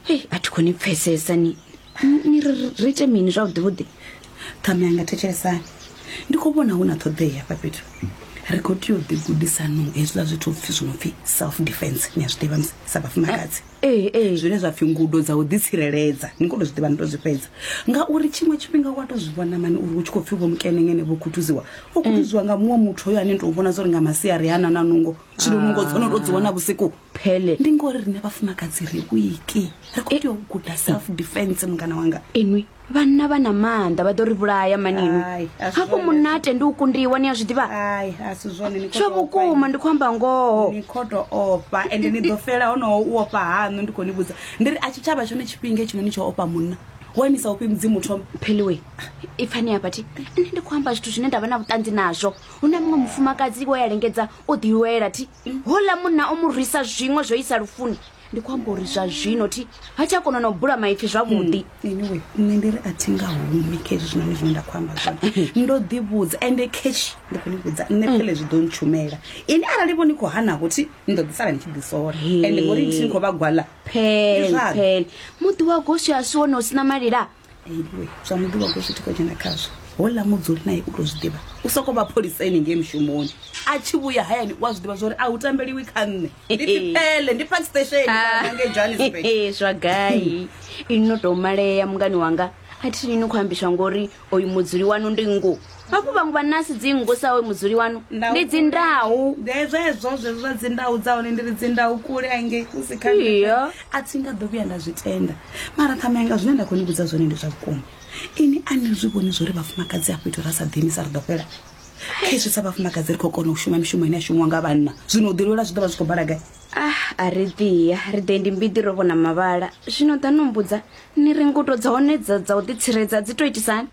hei a thi khoni pfesesa ni ni ri ite mini zwavhuḓi vhuḓi ṱhame yanga thetshelesani ndi khou vhona hu na ṱhoḓea hafha fhethu ri khou tea u ḓi gudisanong hezwiḽa zwithu pfhi zwi no pfhi self defense ni a zwi ḓivha sa vhafumakadzi eh, eh, eh. zwine zwa pfhi ngudo dza u ḓitsireledza ni kho to zwi ḓivha ni to zwi fhedza ngauri tshiṅwe tshifhinga wa to zwi vhona mani uri hu tshi khou pfhi vho mukenengene vho khuthuziwa o khuthuziwa nga muṅwe muthu hoyo ane ni to vhona zwo ri nga masiari hana na nungo zwino nungo dzo no to dzi wana vhusiku phele ndi ngori rine vhafumakadzi ri wiki ri khou tea u guda eh. self defense mungana wanga inwi vhanna vha na maanḓa vha ḓo ri vhulaya manini hafho munna a tendi u kundiwa ni a zwi ḓivha zwa vhukuma ndi khou amba ngoho ni khou to ofha ende ni ḓo fela honoho u ofha haṋu ndi khou ni vhudza ndi ri a tshitshavha tshone tshifhinga tshino ni tsho ofha munna wanisa ufhi mudzimu thoma pheliwe ipfani ya bathi nṋe ndi khou amba zwithu zwine nda vha na vhuṱanzi nazwo hu na muṅwe mufumakadzi wo ya lengedza o ḓilwela thi houḽa munna o mu rwisa zwiṅwe zwo isa lufuni ndi khou amba uri zwa zwino thi ha tsha kona na u bula maipfi zwavhuḓi hmm, anyway nṋe ndi ri a thi nga humi khe hezwi zwinoni zwine nda khou amba zwone ndo ḓivhudza ende kesh ndi khou ni vhudza nṋe phele zwi ḓo ntshumela ini arali vho ni khou hanavho thi ni ḓo ḓisala ni tshi ḓisora ende ngori thi ni khou vha gwala phele phele muḓi wa goswi a si wone u sina malila iwe zwa muḓuvha ko zwithu ko dzhena khazwo hola mudzuli naye u to zwi ḓivha u soko vha pholisa ene ngei mushumoni a tshi vhuya hayani u a zwi ḓivha zwa uri a hu tambeliwi kha nṋe ndi pipele ndi park station ngei johannesburg Ee, zwa gai ini no tou malea mungani wanga a thi ni ni khou ambiswa ngori oyu mudzuli wanu ndi ngo hafhu vhaṅwe vha nasi dzingu sa we mudzuli wanu ndi dzindau zwezwo zwezwo zwa dzindau dza hone ndi ri dzindau kule angei kusi kha a thi nga ḓo vhuya nda zwi tenda mara ṱhamanga zwine nda khou ni vhudza zwone ndi zwa vhukuma ini a ni zwi vhoni zwo ri vhafumakadzi a fhethu ra sa ḓini sa ri ḓo fhela khezwi sa vhafumakadzi ri khou kona u shuma mishumo ine a shumiwa nga vhanna zwino u ḓilwela zwi ḓo vha zwi khou bala gai ah a ri ḓiya ri ḓe ndi mbiḓi ro vhona mavhala zwino ḓa no mbudza ni ri ngudo dza hone dza u ḓitsireledza dzi to itisani